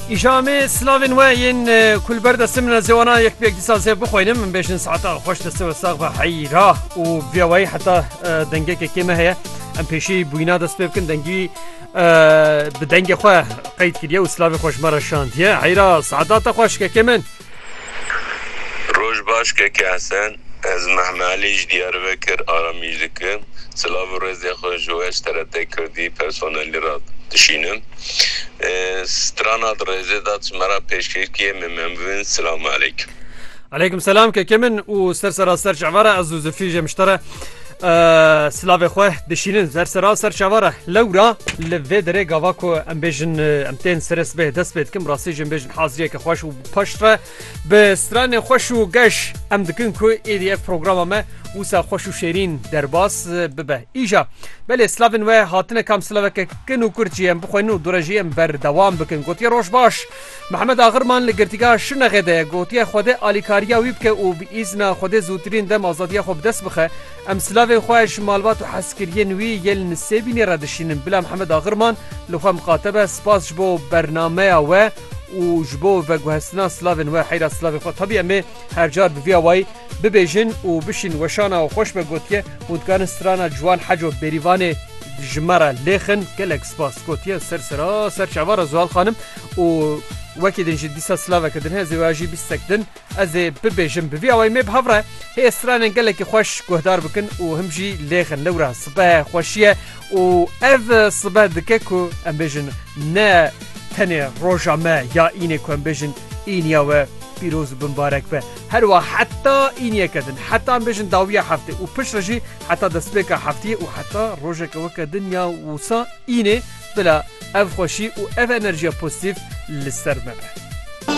Îşamê slavên we yên ku li ber destê min zê wana yek pêk dîsa zê bixwînim min bêjin saeta xweş destê we sax be heyra û vê wayî heta dengekekê me heye em pêşî bûyna dest pê bikin dengî bi dengê xwe qeyd kiriye û slavê xweş me re şandiye heyra saeta te xweşkekê min. Roj baş Keke Hesen, ez Mehme Elî ji Diyarbekir aramîj dikim. Silav û rêzê xwe ji we ji TRT Kirdî personelî re dişînim. Strana di rêzê de tu me re pêşkêş kî yê min memvin. Silamu Eleykum. Eleykum selam keke min û ser serra ser çavara ez û Zilfî jê min ji te re. Silavê xwe dişînin zer sera ser çava re lewra li vê derê gava ku em bêjin em tên serê sibê dest pê dikim rastî jin bêjin haziyeke xweş û paş re bi stranê xweş û geş em dikin ku êdî ev programa me wisa xweş û şêrîn derbas bibe îja belê slavên we hatine kam silaveke kin û kurd jî em bixwenin û dure jî em berdewam bikin gotiye roj baş Mehmet Agirman li Girtîgeha Şirnexê de gotiye Xwedê alîkariya wî bike û bi îzna Xwedê zûtirîn dem azadiya xwe bi dest bixe. Em silavên xwe ji malbat û hezkiriyên wî yên li Sêbînê re dişînin. Bila Mehmet Agirman li xwe miqate be. Spas ji bo bernameya we û ji bo veguhestina silavên we. Heyra silavê xwe tabî em ê her car bi vî awayî bibêjin û bişîn. Weşana û xweş be gotiye hûn dikarin strana ciwan Heco Bêrîvanê ji me re lêxin. Gelek spas gotiye ser seraser çavara Zuhal Xanim. û wekî din jî dîsa silaveke din heye zêwaya jî bîstek din ez ê bibêjim bi vî awayî me bi hev re hê stranên gelekî xweş guhdar bikin û him jî lêxin lewra sibehe xweşiye û ev sibe dike ku em bêjin ne tenê roja me ya înê ku em bêjin îniya we pîroz û binbarek be herwa heta îniyeke din heta em bêjin dawiya heftê û piştre jî heta destpêka heftiyê û heta rojeke weke din ya wisa înê Bila ev xweşî û ev enerjiya pozîtîf li ser me be.